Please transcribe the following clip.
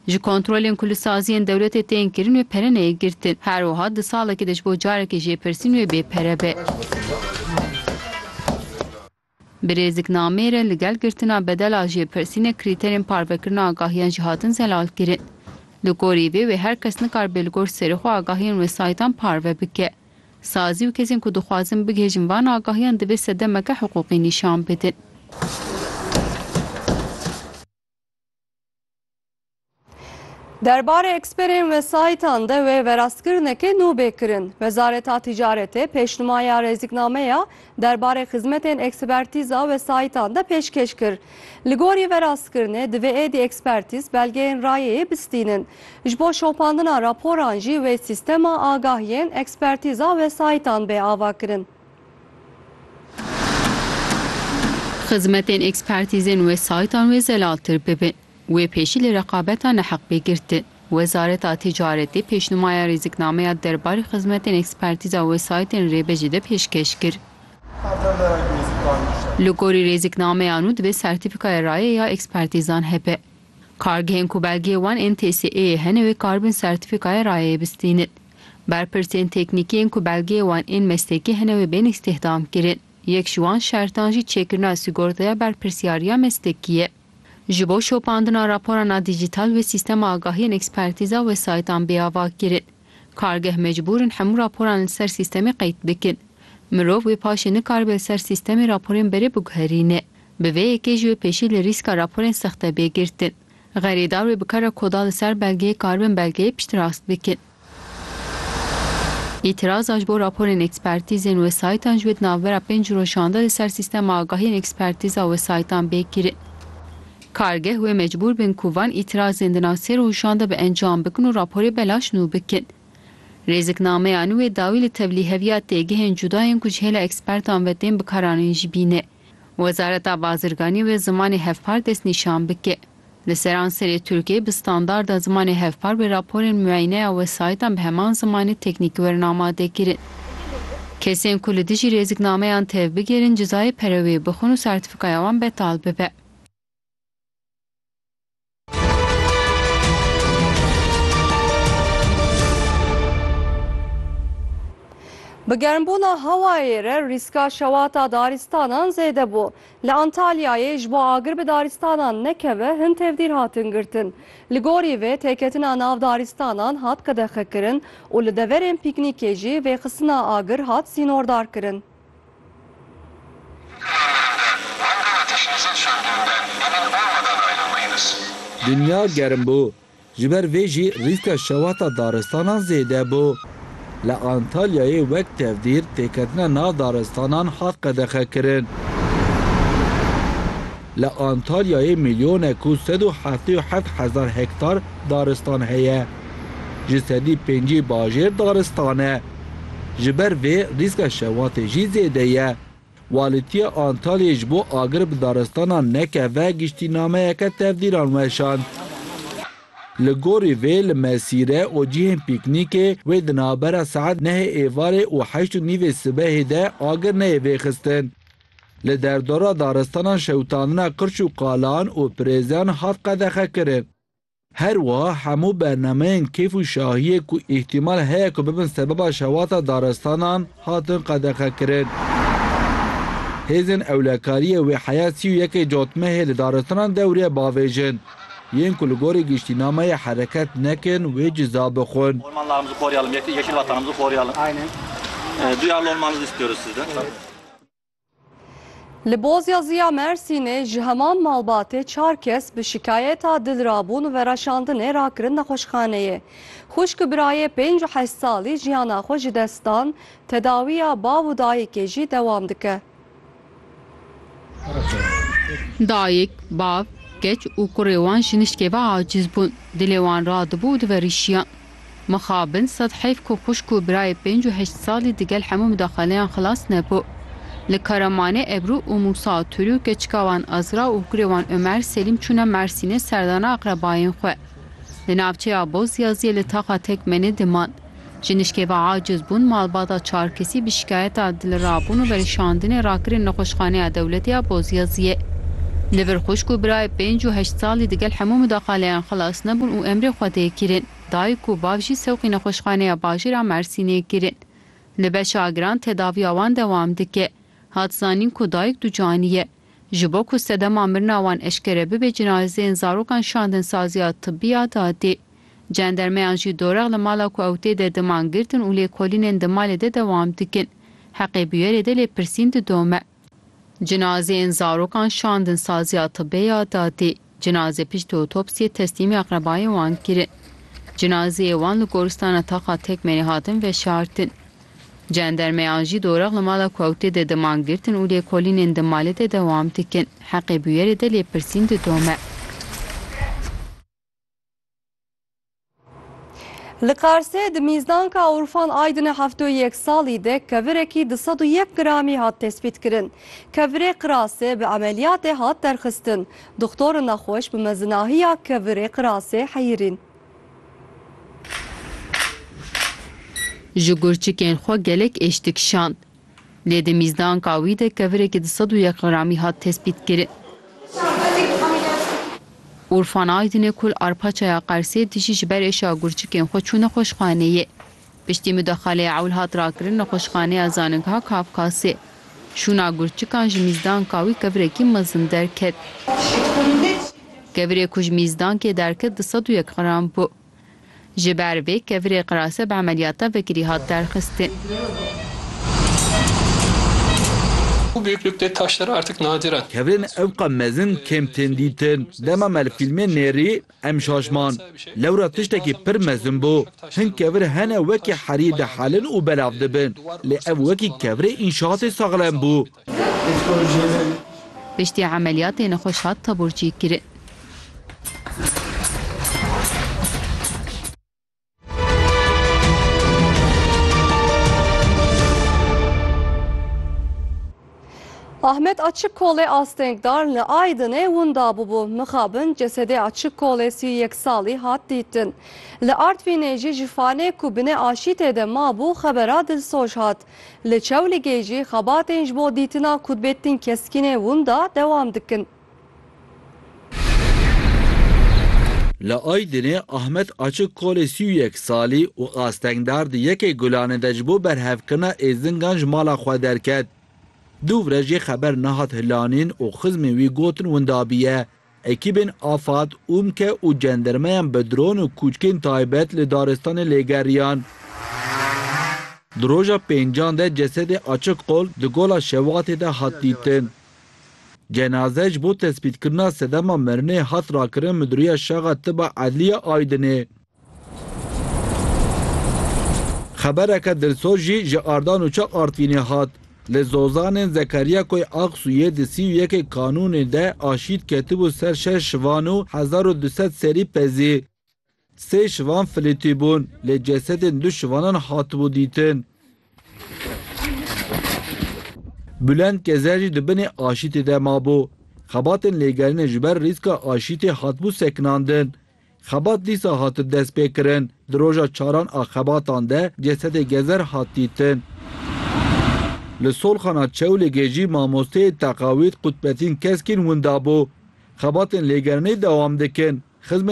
Ji kontrolên ku li saziyên dewletê tên kirin wê pere neyê girtin. Her wiha di salekê de ji bo carekê ji lêpirsîn wê bê pere be. Bi rêziknameyê re li gel girtina bedela ji lêpirsînê krîterên parvekirina agahiyan jî hatin zelalkirin. Li gorî vê wê her kes nikaribe li gor serê xwe agahiyên wesayîtan parve bike. Sazî û kesên ku dixwazin bigihêjin van agahiyan divê sedemeke hiqûqî nîşan bidin. Derbarê eksperên wesayîtan de wê verastkirinekê nû bê kirin. Wezareta Tîcaretê pêşnimaya rêzîknameya derbarê xizmetên ekspertîza wesayîtan de pêşkêş kir. Li gorî verastkirinê divê êdî ekspertîz belgeyên rayeyê bistînin. Ji bo şopandina raporan jî wê sîstema agahiyên ekspertîza wesayîtan bê avakirin. Xizmetên ekspertîzên wesayîtan wê zelaltir bibin. Wê pêşî li reqabeta neheq bê girtin. Wezareta Ticaretê pêşnûmaya rêziknameya derbarê xizmetên ekspertîza wesayîtên rêbe jî de pêşkêş kir. Li gorî rêziknameya nû divê sertîfîkaya rayê ya ekspertîzan hebe. Kargehên ku belgeyê wan ên TSE'yê hene wê karibin sertîfîkaya rayeyê bistînin. Berpirsên teknîkî yên ku belgeyê wan ên meslekî hene wê bên îstîhdam kirin. Yek ji wan şertan jî çêkirina sîgortaya berpirsyariya meslekî ye. Ji bo şopandina raporan a dîjîtal wê sîstema agahî yên ekspertîz a wesayîtan bê ava kirin. Kargeh mecbûr in hemû raporan li ser sîstemê qeyd bikin. Mirov wê paşê nikaribe li ser sîstemê raporên berê biguherîne. Bi vê yekê jî wê pêşî li rîska raporên sexte bê girtin. Xerîdar wê bi kara ku da li ser belgeyê karibin belgeyê pişt rast bikin. Îtiraza ji bo raporên ekspertîzên wesayîtan ji wê di navbera pênc rojan de li ser sîstema agahiyên ekspertîza wesayîtan bê kirin. Kargeh wê mecbûr bin ku van îtirazên di nav sê rojan de bi encam bikin û raporê belaş nû bikin. Rêziknameya nû wê dawî li tevlîheviya têgihên cuda yên ku ji hêla ekspertan ve tên bikaranîn jî bîne. Wezareta Bazirganî wê zimanê hevpar destnîşan bike. Li seranserê Tirkiyeyê bi standarda zimanê hevpar wê raporên muayineya wesayîtan bi heman zimanê teknîkî werin amadekirin. Kesên ku li dijî rêziknameyan tev bigerin cizayê pere wê bixwin û sertîfîkaya wan betal bibe. Bi germbûna hewayê re rîska şewata darîstanan zêde bû. Li Antalyayê ji bo agir bi darîstanan nekeve hin tevdîr hatin girtin. Li gorî vê têketina nav darîstanan hat qedexekirin û li deverên pîknîkê jî vêxistina agir hat sînordarkirin. Dinya germ bû, ji ber vê jî rîska şewata daristanan zêde bû. Li Antalyayê wek tevdîr têketina nav daristanan hat qedexekirin. Li Antalyayê milyonek û sed û heftê û heft hezar hektar daristan heye. Ji sedî pêncî bajêr daristan e. Ji ber vê rîska şewatê jî zêde ye. Walîtiya Antalyayê ji bo agir bi daristanan nekeve giştînameyeke tevdîran weşand. Li gorî vê li mesîre û cihên pîknîkê wê di navbera saet nehê êvarê û heşt û nîvê sibehê de agir neyê vêxistin. Li derdora daristanan şewitandina qirç û qalan û pirêzan hat qedexekirin. Her wiha hemû bernameyên keyf û şahiyê ku îhtîmal heye ku bibin sebeba şewata daristanan hatin qedexekirin. Hêzên ewlekariyê wê heya sî û yekê cotmehê li daristanan dewriye bavêjin. Yên ku li gorî giştînameyê hereket nekin wê ciza bixwin. Li Bozyazîya Mersînê ji heman malbatê çar kes bi şikayeta dilrabûn û vereşandinê rakirin nexweşxaneyê. Xwişk û birayê pênc û heşt salî jiyana xwe ji dest dan, tedawiya bav û dayikê jî dewam dike. Dayik, bav, keç û kurê wan ji nişkê ve acîz bûn, dilê wan radibû û diverîşiyan. Mixabin sed heyf ku xwişk û birayê pênc û heşt salî di gel hemû midaxaleyan xilas nebû. Li Karamanê Ebru û Mûsa Tûrû keçika wan Azra û kurê wan Omer Selîm çûne Mersînê serdana aqrebayên xwe. Li navçeya Bozyaziyê li taxa Tekmenê diman. Ji nişkeva aciz bûn malbata çar kesî bi şikayeta dilirabûn û verişandinê rakirin Nexweşxaneya Dewletê ya Bozyaziyê. Li vir xwişk û birayê pênc û heşt salî di gel hemû midaxaleyan xilas. Nebûn û emrê xwe tê kirin. Dayik û bav jî sewqî nexweşxaneya bajêr a Mersînê kirin. Li Beşagran tedaviya wan dewam dike. Hat zanîn ku dayik ducanî ye. Ji bo ku sedema mirina wan eşkere bibe cinazeyên zarokan şandin saziya tibbî ya dadê. Cendermeyan jî dorex li mala ku ew tê de diman girtin û lêkolînên di malê de dewam dikin. Heqê bûyerê de lêpirsîn didome. Cinazeyên zarokan şandin saziya tibê ya dadê. Cinazê piştî otopsiyê teslîmê aqrebayên wan kirin. Cinazeyê wan li goristana Taxa Tekmerê hatin veşartin. Cendermeyan jî dorek li mala Kewtê de diman girtin û lêkolînên di malê de dewam dikin. Heqê bûyerê de lêpirsîn didome. Li Qarsê di mîzdanka Urfan Aydinê heft û yek salî de kevirekî di sed û yek gramî hat tespîtkirin. Kevirê qirasê bi emeliyatê hat derxistin. Doxtorin nexweş bi mezinahiya kevirê qirasê heyirîn. Ji gurçikên xwe gelek êş dikişand. Lê di mîzdanka wî de kevirêkî di sed û yek gramî hat tespîtkirin. Urfan Aydinê ku li Arpaçaya Qersê dijî ji ber êşa gurçikên xwe çû nexweşxaneyê. Piştî mudexeleyê ewl hat rakirin nexweşxaneya Zaningha Kafkasê. Şûna gurçikan ji mîzdanka wî kevirekî mezin derket. Kevirê ku ji mîzdankê derket di sed û yek gram bû. Ji ber vê kevirê qirase bi emeliyata vekirî hat derxistin. Bu büyüklükte taşlar artık nadiren. Kevirên evqa mezin kêm tên dîtin. Dema me li fîlmê nêrî em şaşman. Lewra tiştekî pir mezin bû. Hin kevir hene wekî herî dihelin û belav dibin. Lê ev wekî kevirê înşaatê saxlem bû. Piştî emeliyatê nexweş hat taburçî kirin. Ahmet açık kolê astengdar li Aydinê winda bûbû. Mixabin cesedê açık kolê sî yek salî hat dîtin. Li Artvînê jî ji fanê ku binê aşîtê de mabû xebera dilsoj hat. Li Çewligê jî xebatên ji bo dîtina kutbêtin keskînê winda dewam dikin. Li Aydinê Ahmet Açik kolê sî û yek salî û astengdar di yekê gulanê de ji bo berhevkirina êzingan ji mala xwe derket. Dû vre jê xeber nehat hilanîn û xizmên wî gotin winda bûye. Ekîbên Afad, Umke û cendirmeyan bi dron û kûçkên taybet li daristanê lêgeriyan. Di roja pêncan de cesedê Açik Kol di gola Şewatê de hat dîtin. Cenaze ji bo tespîtkirina sedema mirinê hat rakirin Midûriya Şaxa Tiba Edlî ya Aydinê. Xebereke dilsoz jî ji Ardan û Çak Artvînê hat. Li Zozanên Zekeriya Koy Aqsuyê di sî û yekê Kanûnê de aşît ketibû ser şeş şivan û hezar û du sed serî pezî. Sê şivan filîtî bûn lê cesedên du şivanan hatibû dîtin. Bulent Gezer jî di binê aşîtê de mabû. Xebatên lêgerînê ji ber rîska aşîtê hatibû sekinandin. Xebat dîsa hatin destpêkirin. Di roja çaran a xebatan de cesedê Gezer hat dîtin. Li Solxana Çewlîgê jî mamosteyê teqawîd Qutbetîn Keskîn winda bû. Xebatên lêgerînê dewam dikin. Xizmên